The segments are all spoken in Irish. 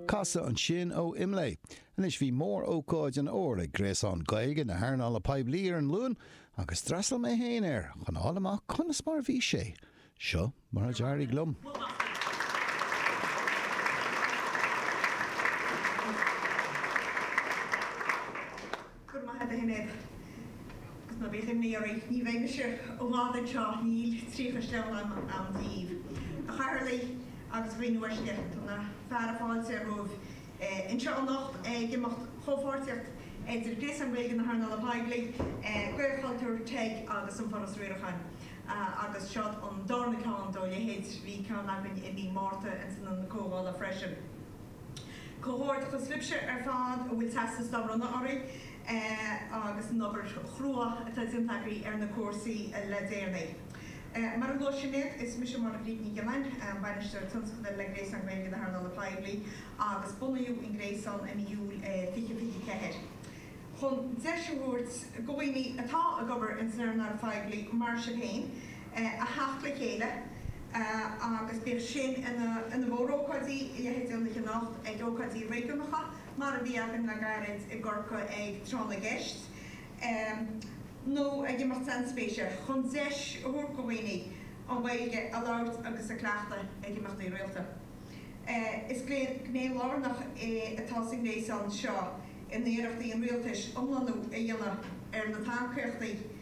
Cathal ansin ó Imlé. Anois bhí mórócáid an Fhómhair ag Gréasán Gaeilge na hEarnála Poiblí ar an Luan agus d'fhreastal mé féin air chun a fháil amach conas mar a bhí sé. Seo mar a d'éirigh liom. Go raibh maith agat a Shinéad agus ná bíodh aon imní oraibh, ní bheidh mise i bhfad anseo, níl tríocha sleamhnán agam daoibh. A Chathaoirligh agus a dhaoine uaisle, tá na fearadh fáilte romhaibh anseo anocht ag imeacht comhpháirtíochta idir Gréasán Gaeilge na hEarnála Poiblí, Gaelchultúr, TEG agus an Foras Riaracháin agus seo an dárna ceann dá leithéid, bhí ceann againn i mí Márta ins an Ionad Comhdhála freisin. Comhghairdeachas libhse ar fad a bhfuil teastas dá bhronnadh oraibh agus an obair chrua atá déanta agaibh ar na cúrsaí le déanaí. Mar a luaigh Sinéad, is mise Máire-Bríd Ní Ghionnáin, Bainisteoir Tionscadail le Gréasán Gaeilge na hEarnála Poiblí agus bunaíodh an Gréasán i mí Iúil 2024 chun deis a thabhairt do dhaoine atá ag obair ins an earnáil phoiblí, mar sibh féin, a theacht le chéile agus bíodh sin ina mhórócáidí, leithéid de anocht, ag ócáidí réigiúnacha mar a bhí againn le gairid i gCorcaigh ag Tráth na gCeist, nó ag imeacht sainspéise chun deis a thabhairt go dhaoine an Ghaeilge a labhairt agus a chleachtadh ag imeachtaí rialta. Is gné lárnach é atá sa ngréasán seo in iarrachtaí an Rialtais iomlánú a dhéanamh ar na tacaíochtaí,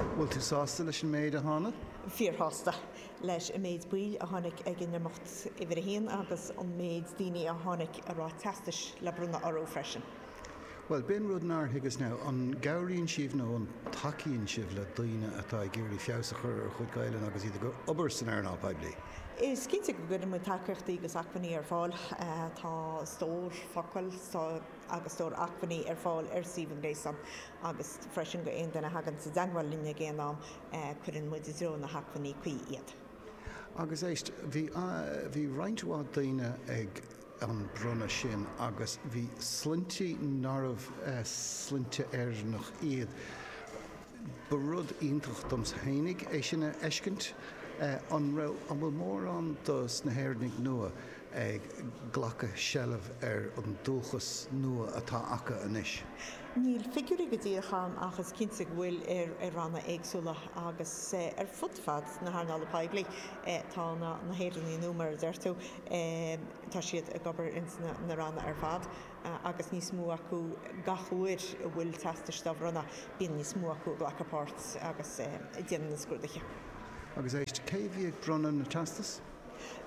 Bhfuil tú sásta leis an méid a tháinig? Fíorshásta leis an méid baill a tháinig ag an imeacht uimhir a haon agus an méid daoine a tháinig a raibh teastais le bronnadh orthu freisin. Bhuel, b'in rud nár thuigeas now. An gcabhraíonn sibh nó an dtacaíonn sibh le daoine atá ag iarraidh feabhas a chur ar a chuid Gaelainne agus iad ag obair san earnáil poiblí? Is cinnte go gcuireann muid tacaíochtaí agus acmhainní ar fáil. Tá stór focal agus stór acmhainní ar fáil ar suíomh an Ghréasáin. agus freisin go aon duine a thagann sa dteagmhail linn ag aon am cuireann muid i dtreo na hacmhainní cuí iad. Agus éist, bhí roinnt mhaith daoine ag an bronnadh sin agus bhí sloinnte nárbh sloinnte Éireannach iad. Ba rud iontach domsa fhéinig é sin a fheiscint. An raibh, an bhfuil mórán dos na hÉireannaigh nua ag glacadh seilbh ar an dúchas nua atá acu anois. Níl figiúirí go díreach ann ach is cinnte go bhfuil i ranna éagsúla agus ar fud fad na hearnála poiblí tá na hÉireannaigh nua mar a deir tú, tá siad ag obair ins na ranna ar fad agus níos mó acu gach uair a bhfuil teastais dá bhronnadh bíonn níos mó acu ag glacadh páirt agus ag déanamh na scrúduithe. Agus éist, cé a bhí ag bronnadh na teastas?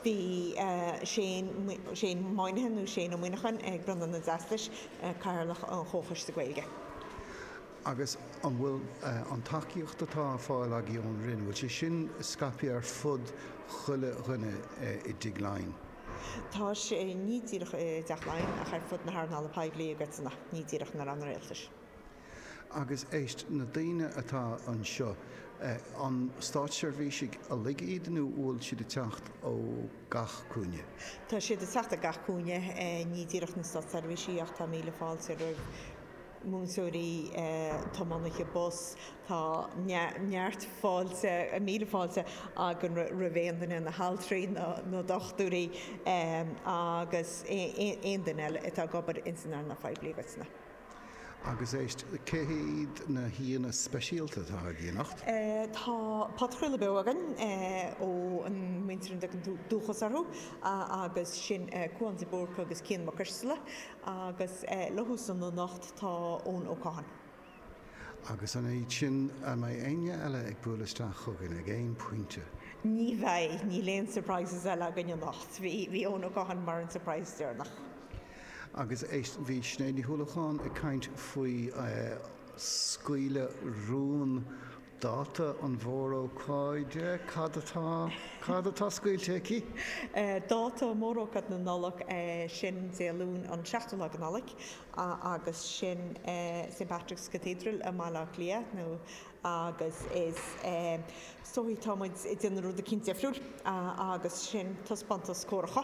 Bhí Shane Moynihan, nó Shane Ó Muineacháin, ag bronnadh na dteastais, Cathaoirleach an Chomhchoiste Gaeilge. Agus an bhfuil an tacaíocht atá á fáil agaibh ón Roinn, bhfuil sé sin scaipthe ar fud chuile dhuine i dTigh Laighean? Tá sé, ní díreach i dTeach Laighean ach ar fud na hearnála poiblí i gcoitinne, ní díreach na Ranna Rialtais. Agus éist, na daoine atá anseo, an státseirbhísigh uilig iad nó bhfuil siad ag teacht ó gach cúinne? Tá siad ag teacht ó gach cúinne, ní díreach na státseirbhísigh ach tá míle fáilte roimh mhúinteoirí, tiománaithe bus, tá neart fáilte, míle fáilte againn roimh aon duine, na haltraí, na dochtúirí agus aon duine eile atá ag obair ins an earnáil phoiblí i gcoitinne. Agus éist, cé hiad na haíonna speisialta atá ag déanamh anocht? Tá podchraoladh beo againn ón muintir a dtugann tú Dúchas orthu agus sin Cúán de Búrca agus Cian Mac Coisteala agus leofa san anocht tá Eoin Ó Catháin. Agus an fhaid sin an mbeidh éinne eile ag bualadh isteach chugainn ag aon pointe? Ní bheidh, níl aon surprises eile againn anocht. Bhí Eoin Ó Catháin mar an surprise deireanach. Agus éist, bhí Sinéad Ní Uallacháin ag caint faoi scaoileadh rún dáta na mórócáide, cad atá, cad atá scaoilte aici? Dáta mórócáid na Nollag, sin Dé Luain an seachtú lá de Nollaig agus sin St Patrick's Cathedral i mBaile Átha Cliath nó agus is so tá muid ag déanamh rud éicint difriúil agus sin taispeántas córacha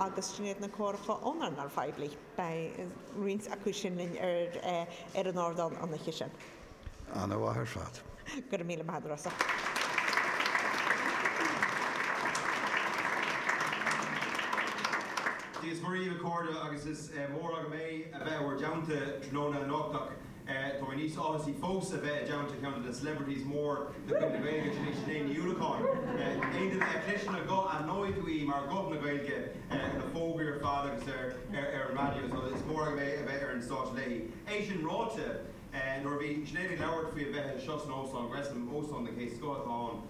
agus sin iad na córacha ón earnáil phoiblí. Beidh roinnt acu sin linn ar an ardán an oíche sin. Ana-mhaith ar fad. Go raibh míle maith agat Rossa. Dia is Muire dhíbh a chairde agus is mór againn é a bheith in bhur dteannta tráthnóna anocht ach Táimid níos áthasaí fós a bheith i dteannta ceann de na celebrities mór de chuid na Gaeilge, sin í Sinéad Ní Uallacháin. Aon duine a chloiseann a guth aithneoidh tú í mar ghuth na Gaeilge ar na fógraí ar fad agus ar an raidió so is mór againn é a bheith ar an stáitse léi. É sin ráite, nuair a bhí Sinéad ag labhairt faoi a bheith anseo san Óstán Gresham, óstán den chéad scoth atá ann,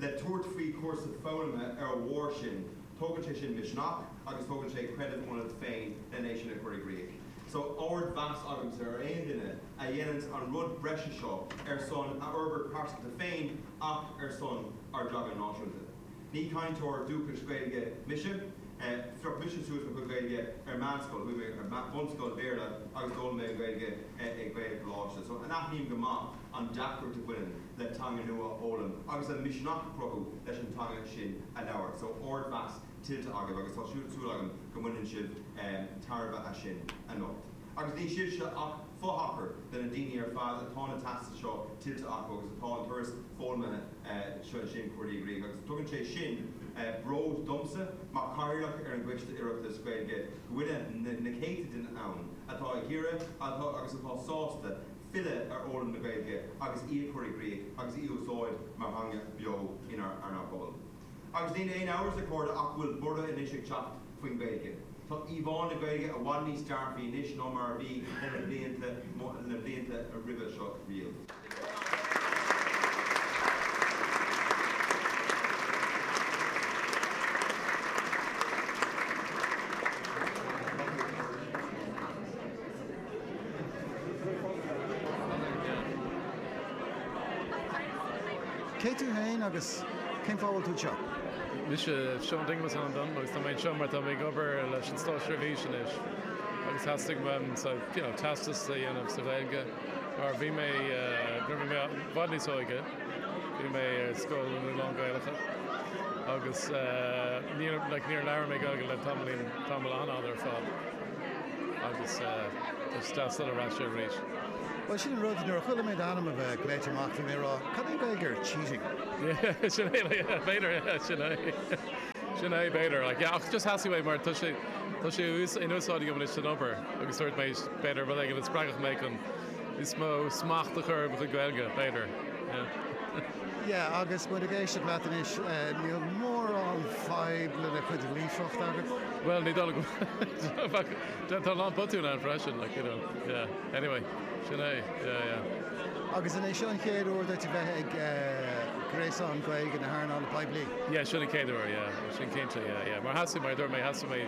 le tabhairt faoi chúrsa foghlama ar a bharr sin. Tógann sé sin misneach agus tógann sé creideamh ionat féin lena é sin a chur i gcrích. So ardmheas agamsa ar aon duine a dhéanann an rud breise seo ar son a fhorbairt pearsanta féin ach ar son ár dteanga náisiúnta. Ní cainteoir dúchais Gaeilge mise. Phioc mise suas mo chuid Gaeilge ar meánscoil. Chuaigh mé ar bhunscoil Bhéarla agus d'fhoghlaim mé an Ghaeilge ag Gaelcholáiste. So aithním go maith an deacracht a bhaineann. le teanga nua a fhoghlaim agus an misneach a chruthú leis an teanga sin a labhairt. So ardmheas tuillte agaibh agus tá súil agam go mbaineann sibh tairbhe as sin anocht. Agus ní sibhse ach fo-thacar de na daoine ar fad atá na teastais seo tuillte acu agus atá an cúrsa foghlama sin curtha i gcrích agus tugann sé sin bród domsa mar Chathaoirleach ar an gCoiste Oireachtais Gaeilge go bhfuil na céadta daoine ann atá ag iarraidh agus atá sásta filleadh ar fhoghlaim na Gaeilge agus í a chur i gcrích agus í a úsáid mar theanga bheo inár bpobal. Agus níl aon amhras, a chairde, ach go bhfuil borradh anois ag teacht faoin Ghaeilge. Tá íomhá na Gaeilge i bhfad níos dearfaí anois ná mar a bhí leis na blianta na blianta roimhe seo riamh. Cé tú fhéin agus cén fáth a bhfuil tú anseo? Mise Seán Dinglasáin Ó Donnchú agus tá mé anseo mar tá mé ag obair leis an státseirbhís anois agus theastaigh uaim so you know teastas a dhéanamh sa Ghaeilge mar bhí mé uh, nuair bhí mé i bhfad níos óige bhí mé ar scoil lán-Ghaelach agus uh, níor like, níor labhair mé Gaeilge le tamlín tamall an-fhada ar fad Agus tá Steasel ar ais arís. Bhuel, sin an rud, nuair a chuala mé d'ainm a bheith glaoite amach, bhí mé ag rá, cad é an Ghaeilge ar cheating? Sin é, b'fhéidir, sin é. Sin é, b'fhéidir. Ach just shocraigh mé mar tá sé in úsáid agam anois don obair agus dúirt mé, b'fhéidir, rud éigin a spreagfadh mé chun níos mó smacht a chur ar mo chuid Gaeilge, b'fhéidir. Yeah, agus muid ag éisteacht leat anois, níl mórán fadhb le do chuid líofacht agat. Bhuel, ní dóigh liom. Tá a lán botúin ann freisin, like, you know, yeah. Anyway, sin é, yeah, yeah. Agus an é seo an chéad uair duit a bheith ag gréasán Gaeilge na hearnála poiblí? Yeah, sin an chéad uair, yeah. Sin cinnte, yeah, yeah. Mar theastaigh, mar a dúirt mé, theastaigh mé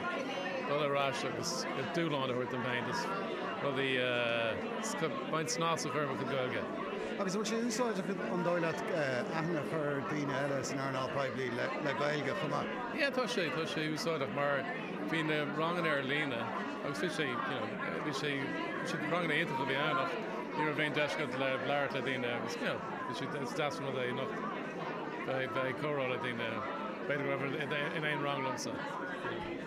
dul ar ais agus dúshlán a thabhairt dom féin, rudaí, beagán snas a chur ar mo chuid Gaeilge. Agus an bhfuil sé úsáideach, an dóigh leat, aithne a chur ar daoine eile san earnáil poiblí le Gaeilge chomh maith? Yeah, tá sé, tá sé úsáideach mar bhí na ranganna ar líne agus bhí sé, you know, bhí sé, bhí sé ranganna iontacha a bhí ann ach ní raibh aon deis agat le labhairt le daoine agus, you know, bhí sé is deas an rud é anocht bheith bheith ag comhrá le daoine. B'fhéidir go raibh in aon rang liomsa.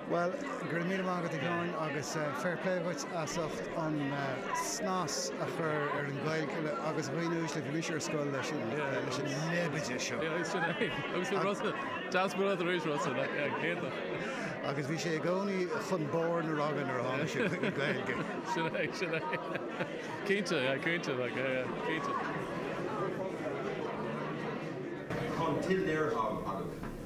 Bhuel, go raibh míle maith agat, a Sheáin, agus fair play dhuit as ucht an snas a chur ar an Ghaeilge agus a dhaoine uaisle. Bhí mise ar scoil leis an leibide seo. Yeah, sin é. Agus bhí Rossa, deas go raibh tú tar éis Rossa, le céadach. Agus bhí sé i gcónaí chun barr na ranga nuair a tháinig sé chuig an Ghaeilge. Sin é, sin é. Cinnte, yeah, cinnte, like, yeah, yeah, cinnte. Tá an t-léiritheán agat.